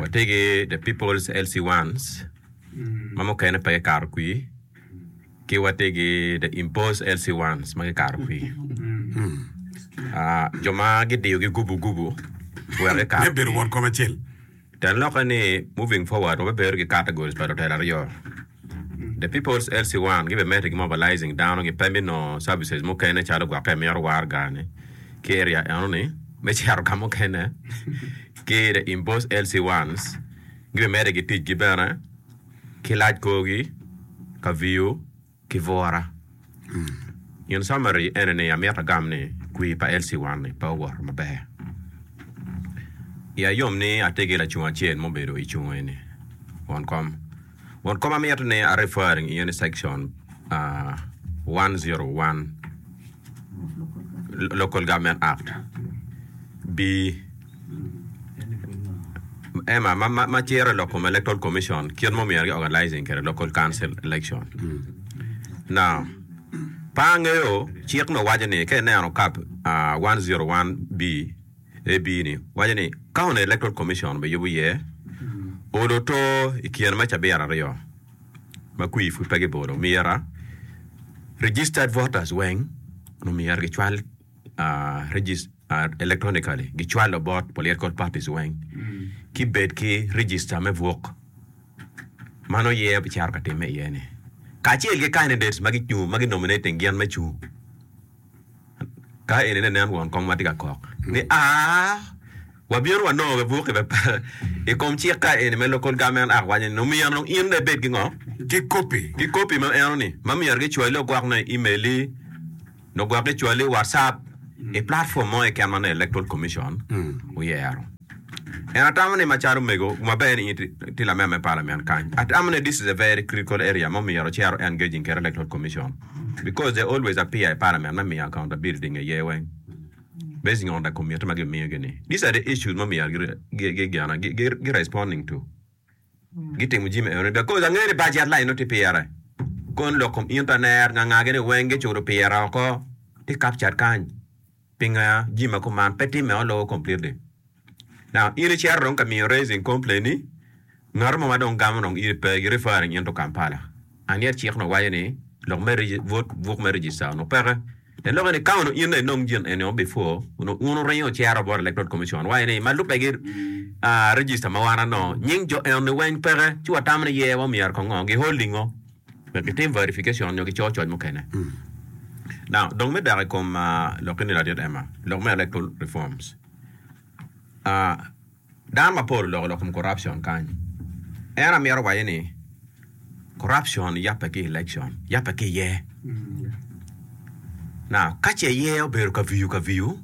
Watye ki The People's Elsie Wants, ma mukene pe gikato kwir, ki watye ki The Imposed Elsie Wants ma gikato kwir. Jo ma gidiyogi gubu gubu wek gikato kwir. Me bedo won kom acel. Teng lokke ni, Moving Forward, wabibedo ki categories pa lutela aryo. The People's LC One gibe meti gi mobilizing dano gi pe me nongo services mukene calo gwokke amito war gani ki area eno ni me cito ka mukene ki the Imbos LC Ones gibe meti gi tic gi bene ki lac korgi, Kaviu ki Bura. In summary ene ni amito agam ni kwir pa Elsie Wan ni pe owoto maber. Iya yom ni atye ki lacung acel mubedo icung eni, won kom. Won kom amito ni a referring iye ni section uh, 101 Local Government Act bi Emma, ma ciro lok kom Electoral Commission kit ma omyero gi-organizing kwede Local Council election. Now, pe angeyo cik ma waco ni, ka ineno kap one zero one B, AB ni, waco ni County Electoral Commission biyubo iye oluto i kine me cabit aryo ma kwir pud pe gibolo omyera, registered voters weng omyero gicwal. electronically gicwalo bot political parties weng ki bed ki register me bwok ma nongo yeya bicito ka timme iye ni kacel ki candidates ma gicung ma gi nominating gin me cung ka eni aye nen won kong ma tye ka kok ni aa wabino wanongo be bwok i kom cik ka eni me local government act waco ni omyero dong in dong ibed ki ngo ki copy ma myero gicwali woko ni email-li. Nongo gwok icwali i WhatsApp i platform mo keken ma nongo Electoral Commission oyero. En atamo ni macalo omego maber ni in itye lamemba me Parliament kany, atamo ni this is a very critical area ma omyero cero engaging kede Electoral Commission because they always appear i Parliament me miyo accountability nge yer weng basing on the committee ma gimiyogi ni. These are the issues ma omyero gi responding to. gitimo jimi eno ni dakozi angeyo ni budget line nongo tye pire kon lok kom internet nganga gene weng gicuto pire oko tye captured kany pinga jimi ma kuman pe time o lowo completely now in icero dong ka miyo raising complain ni ngato mo ma dong gamo dong iri pe gi referring into Kampala and yet cik no waco ni lok me vote buk me register onongo peke En loko ni, Ka onongo in aye inongo gin eni before, onongo un wuringo wucito bot Electoral Commission wa ni, ma lubbe ki register ma wan ano, nying jo eno ni weny peke, ci watamo ni ye, wa myero kongo, gi holding ngo wek gitim verification nyo gico coc mukene. Now, dong me dok i kom lok eni ladit Emma, lok me electoral reforms. Dano mapol oloko lok kom corruption kany. En amito waci ni corruption yabbe ki election, yabbe ki iye. Now ka ce iye obedo kaviyu kaviyu,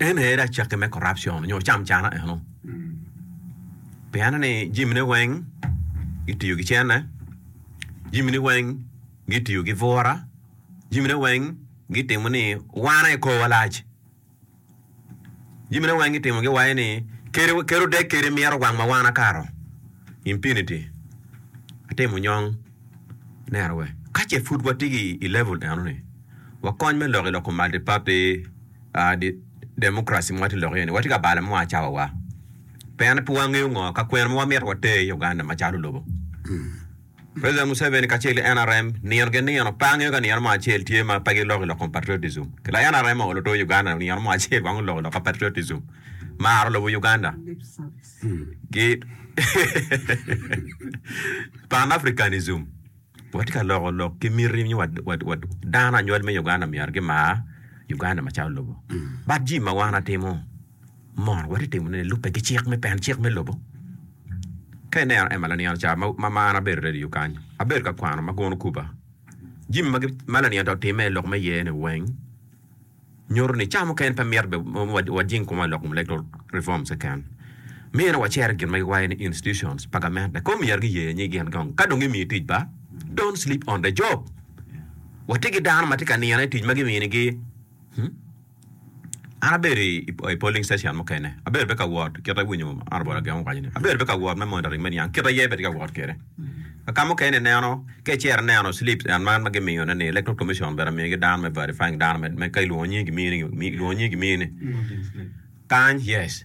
en aye dong cakki me corruption nyo cam cana eno. Pien ni jimine weng gitiyo ki cene, jimini weng gitiyo ki bura, jimine weng gitimo ni wan aye korwa lac. Jamine weng gitimo gi waye ni keri kero dek keri miro wang ma wan akato infinity atimo nyong nera we ka ce pud wati gi i level eno ni wakony me lok i loko multi party uh, di, democracy ma wati lok iye ni wati ka balo mo a cawa wa pien pe wangeyo ngo ka kwena ma wamito water i Uganda macalo lobo President Museveni kacel ki nrm nino ki nino pe angeyo ka nino mo acel tye ma pe giloko ilok kom patriotism. Ki la nrm ongolo to Uganda nino mo acel wang oloko ilok ka patriotism. Maro lobo Uganda ki Pan Africanism. Watye ka loko lok ki miti nyo wa dano anywal me Uganda myero gimar Uganda macalo lobo. But jim ma wan atimo. Mor watye timo ne lube ki cik me peno cik me lobo. Ka ineno Emma laniano ca ma mar abedo radio kany abedo ka kwano ma guno kuba jimi ma ma laniano ca otime ilok me yer ni weng nyuto ni ca mukene pe myero be wajing kuma ilok me electoral reforms keken mino wacero gin ma giwayo ni institutions pa gamente ko myero gi yer nyig in gong ka dong gi miyi tic ba don't sleep on the job watye ki dano ma tye ka nino i tic ma gimini gi. An abedo i polling station mukene, abedo bene ka wot kit ma iwinyo Honourable Agem owaco ni, abedo bene ka wot me monitoring me niang kit aye bene atye ka wot kwede. Kaka mukene ineno ka icito ineno slips en man ma gimiyone ni Electoral Commission bene omiyogi dano me verifying dano me, me ka ilwongo nyingi gimiyoni, ilwongo nyingi gimiyoni kany, yes.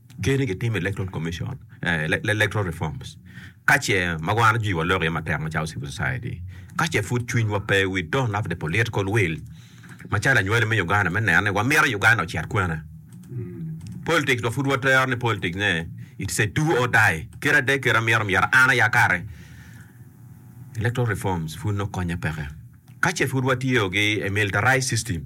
Ker ni gitim electoral commission, electoral reforms ka ce ma wan ajwi wa lok iye matek macalo civil society ka ce pud cwiny wa pe we don't have the political will macalo anywali me Uganda me neno ni wa mito Uganda ocit kwene politics wa pud wa tero ni politics ne it's a do or die kit ade kit amito myero an aya kare electoral reforms pud no konye peke ka ce pud wa tiyo gi a militarized system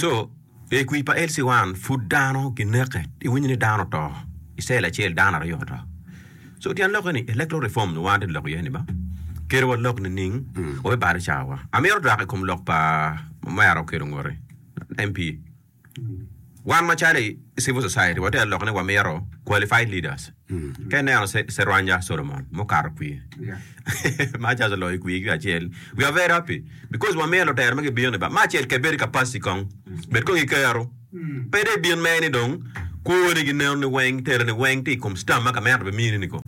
Co. I kwi pa LC 1, pud dano gineke. Iwinyo ni dano oto. I cell acel, dano aryo oto. Co. Tyen lokke ni, electoral reform nyo wan atye ka lok iye ni ba, kelo walok nining? Wape balo cawawa. Amito dok i kom lok pa Omera Okedo Ngoti, MP. Wan macalo i civil society, watye ka lok ni wamito qualified leaders. Ka ineno Cerwanja Solomon mukato kwir ma just oloyo i kwir ki acel, we are very happy because wamiyo lutera ma gibino ni ba ma acel kebedi capacity kong bed kong ikero pe dong ibin mere ni dong kwoni gi neno ni weng telo ni weng tye i kom stam ma kamera be mini ni kong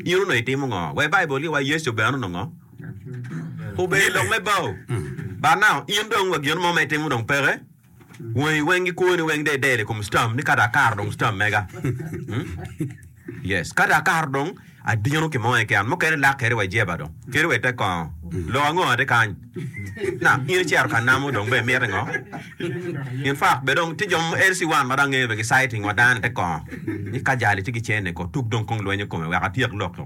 in onongo itimo ngo wa i Bible gi wa Yecu bene onongo ngo obedo i lok me bao but now in dong wa gin mo ma itimo dong peke. Wangi weng gikwo ni weng dede i kom stam ni kata akato dong stam mega yes kata akato dong adino ki mo keken mukene lak keri wa jeba dong keri wa ite kongo lok ango ati kany na in icero ka namo dong be miti ngo in fak be dong ti jo mo LC one ma dong angeyo be gi citing wa dano ite kongo ni ka jali ci gicene ko tuk dong kong lwenyo kome wek atyek lok to.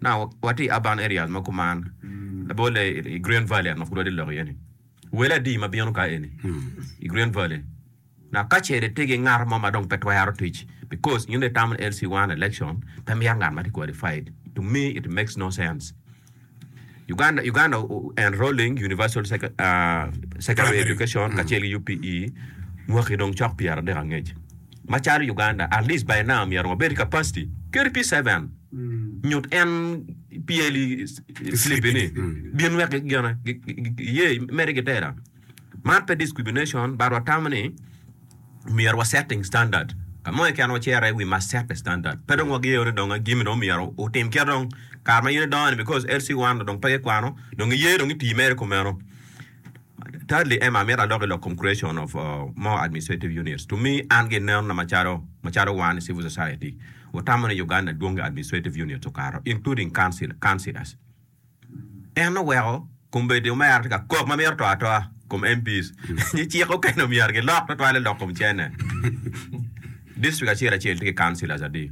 Now wati i urban areas mo kuman labolle i Green Valley ango pud wati lok iye ni wel adi ma bino ka eni i Green Valley. Now kacele tye ki ngat mo ma dong pe twero tic because in dong itamo ni LC one election pe mito ngat ma tye qualified to me it makes no sense. Uganda Uganda enrolling universal second ahh secondary Primary. education kacel ki UPE mwaki dong cok pyera dek angec. Macalo Uganda at least by now myero wabed ki capacity kadi pi seven nyut en pyeli slip ni bin wek gigena giye mede gitera man pe discrimination but watamo ni myero wa setting standard kamo keken wacere we must set the standard pe dong wageyo ni dong agimi dong myero otim kit dong kare ma in idongo ni because LC one dong pe gikwano dong iye dong iti mere kumeno. Thirdly, Emma, amito alok i lok kom creation of more administrative units. To me, an gi nen na macalo macalo wan i civil society wutamo ni Uganda dwong i administrative units okato, including council, councillors. En oweko kombeddi omera tye ka kok ma mito to atoa kom MPs ni cik okene omyero gilok tutwale lok kom cene. District acel acel tye ki councillors adi?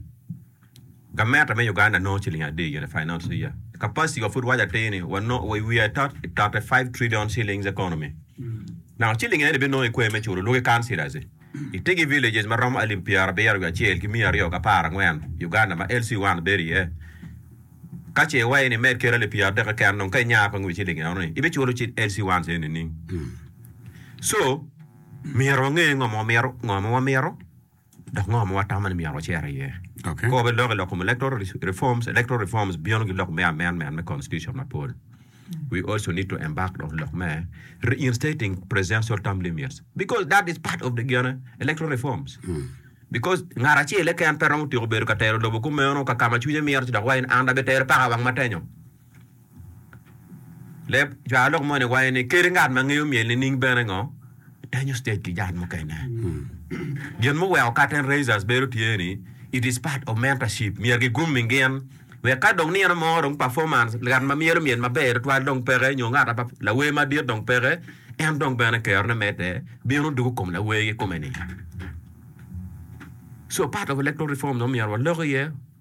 Gavmeta me Uganda nongo ciling adi gire finance the year capacity wa pud waco atir ni wanongo we are thirty thirty five trillion shillings economy naka ciling eni bi nongo ikwer me culo lwaki councillors itigi villages ma romo alip pyera abiro wiye acel ki miya aryo ki apar angwen Uganda ma LC one bedo iye kace iwaci ni imed kelo alip pyera adek keken dong ka inyaro kong wiye ciling eno ni ibi culo ci LC ones eni nining so myero wange ngo ma wamito ngo ma wamito. Dok ngo ma watamo ni myero wacer iye? Kor me lok i lok kom electoral reforms, electoral reforms bino ki lok me amendment me constitution mapol. We also need to embark on lok me reinstating presidential term limits because that is part of the gene electoral reforms. Because ngat acel keken pe romo tyeko bedo ka tero lobo kumeno kakama cwinye mito ci dok wa in an abitero paka wang matenyo. Leb cwalo lok moni waco ni kadi ngat ma ngeyo myel nining bene ngo denyo stage ki jal mukene. Gin muweko curtain raisers bedo tye ni it is part of mentorship myero ki grooming gin wek ka dong nino mo dong performance ngat ma myelo myel maber tutwal dong peke nyo ngat apa lawer madit dong peke en dong bene kero ne medde bino dugo kom lawer kikome ni so part of electoral reform dong myero walok iye.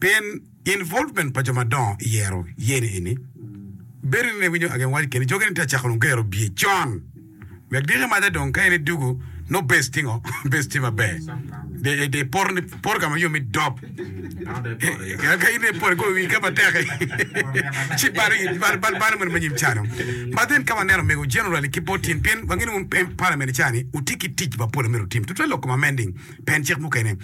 Pien involvement pa jo madongo i yero yeni eni, bedo ni ne winyo agen waco keni joge ni tye acako dong gero bye con wek diki maca dong ka in idugu no base tye ngo base tye maber de de poto ni poto ka ma yom mi dop ka in ipot igoyo wi ka matek ci balo balo balo balo meno me nyim cano ma then ka waneno mego generally ki bot in pien wangi ni wun parliament cani wutye ki tic mapol amito tim tutwal loko ma amending pen cik mukene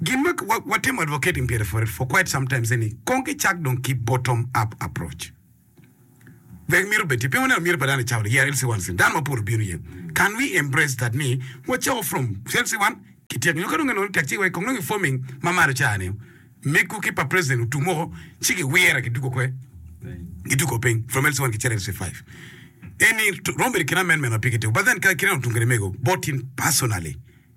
Gin ma watimo advocating pire for for quite sometimes eni kong ki cak dong ki bottom up approach. There myero obed tye, piny waneno myero pa dano icawa ni yeah LC1 sin dano ma pol obino iye. Can we embrace that ni wacako from LC1 ki tyeko nyo ka dong eno ni tek ci wai kong dong i forming ma malo ca ni megu ki pa president otum woko ci ki wire ki dugo kwe ki dugo piny from LC1 ki cito LC5 eni romo bedo i kin amendment ma pigi tek but then ka kite dong otum kede mego both in personally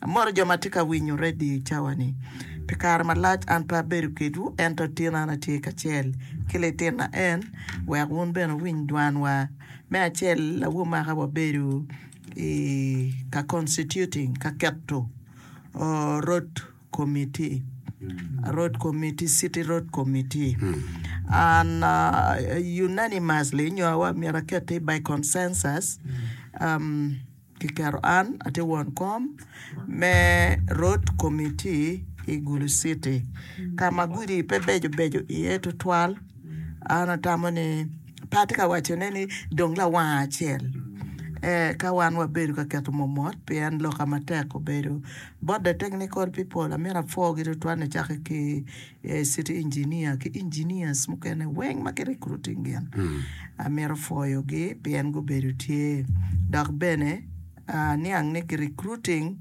Amoto jo ma tye ka winyo redio i cawa-ni. Pi kare malac an pe abedo kedwu, ento tin an atye kacel ki litinna en, wek wun bene wuwiny dwanwa. Me acel, awobi maka wabedo i ka constituting, ka keto road committee, road committee, city road committee, and unanimously, nyo myero akette by consensus, Kiketo an atye won kom me Road Committee i Gulu City ka ma gudi pe beco beco iye tutwal. An atamo ni pe atye ka wacone ni dong lawanga acel eka wan wabedo ka keto momot pien loka matek obedo. Boda Technical People amyero apwogi tutwal nicake ki ee city engineer ki engineers mukene weng ma ki recruiting gin amito pwoyo gi pien gubedo tye dok bene aniang ni ki recruiting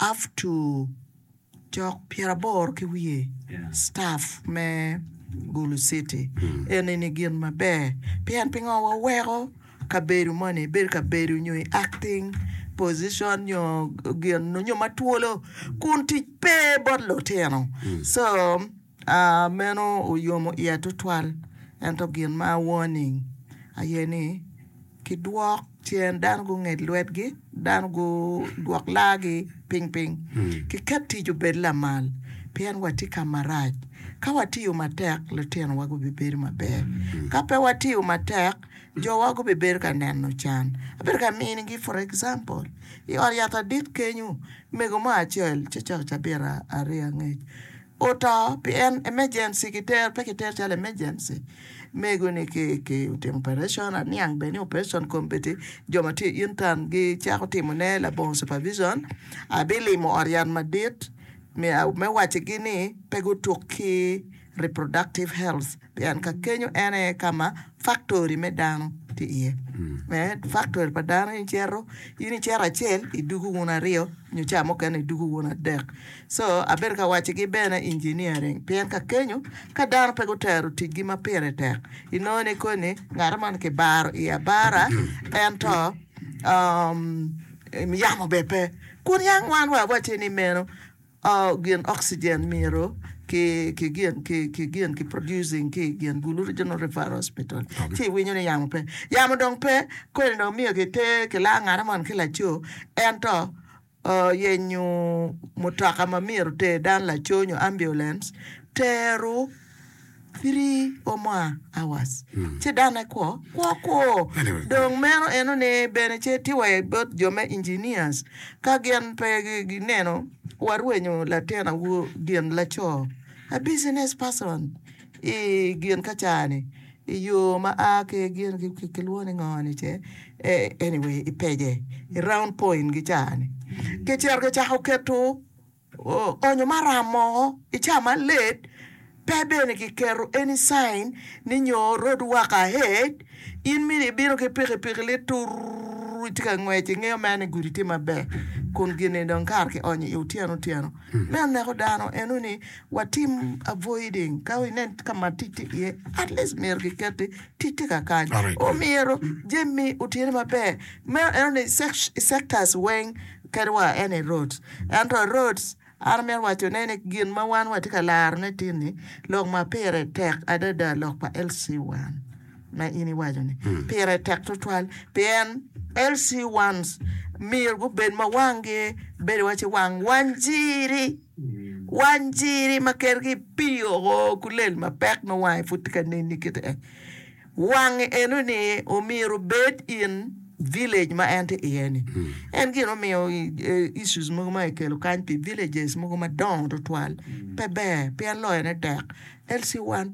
up to cok pyera aboro ki wiye staff me gulu city eni ni gin maber pien pingo wa weko Kabedo moni bedo kabedo nyo i acting position nyo gin nyo ma twolo kun tic pe bot lutino so meno oyomo iya tutwal ento gin ma warning aye ni ki dwok cen dano gunget lwetgi dano gudwok laagi ping ping ki ket tic obed lamal pien wa tye kama rac ka watiyo matek lutinowa gubibedo maber ka pe watiyo matek Jowa gubibedo ka neno can. Abedo ka minigi for example, i ot yat adit kenyo, mego mo acel ci coko cabita aryo angec oto pi en emergency kitero pe kitero calo emergency. Mego ni ki ki otimo operation aniang bene ni operation kombeddi jo ma tye i intern gi cako timo ne labongo supervision abilimo ot yat madit me wacci gi ni pe gutuk ki Reproductive health, pien ka kenyo en aye ka ma faktori me dano tye iye. Me faktori pa dano in cito, in icito acel idugu wun aryo nyo ca mukene idugu wun adek. Co abedo ka waccigi bene engineering pien ka kenyo ka dano pe gutero ticgi ma pire tek inongo ni koni ngato moni kibaro iye abara ento yamo bene pe kun yang wan wa awacce ni meno. Gin oxygen myero ki gin ki producing ki i gin Gulu Regional Referral Hospital ci iwinyo ni yamo pe, yamo dong pe kodi dong myero ki ter ki laa ngane moni ki laco ento yenyo mutoka ma myero oter dano laco nyo ambulance tero. three or more hours ci dano aye kwo kwo kwo dong meno eno ni bene ce tye wa bot jo me engineers ka gin pe gi neno warwenyo latin awobi gin laco a business person i gin ka ca ni i yo ma a ki gin ki lwongo ni ngo ni ce anyway i pece i round point gi ca ni ki cito ki cako keto Onyo maram mo i ca ma late pe bene ki keto any sign ni nyo road work ahead in mini i bino ki piki piki lit tur i tye ka ngwec i ngeyo mere ni gudi tye maber kun gini dong kare ki onyo i otyeno otyeno me oneko dano eno ni wa tim avoiding ka i nen ka ma tic tye iye at least myero ki keti tic tye ka kany omyero jami otine maber meno eno ni sectors weng Kedwa en aye Rhodes. Ento Rhodes, an amito wacone ni gin ma wan watye ka larone tin-ni, lok ma pire tek adada lok pa LC1 ma in iwaco-ni, pire tek tutwal pien LC1s myero gubed ma wanggi bedo waci wang wanjiri, wanjiri ma kergi pii oko ku lel mapek ma wange pud tye ka neni kit-ti. Wange eno ni omyero bed in village ma en tye iye ni. En gin omiyo issues mogo ma ekelo kany pi villages mogo madongo tutwal pe ber pien loyone tek. LC1 pe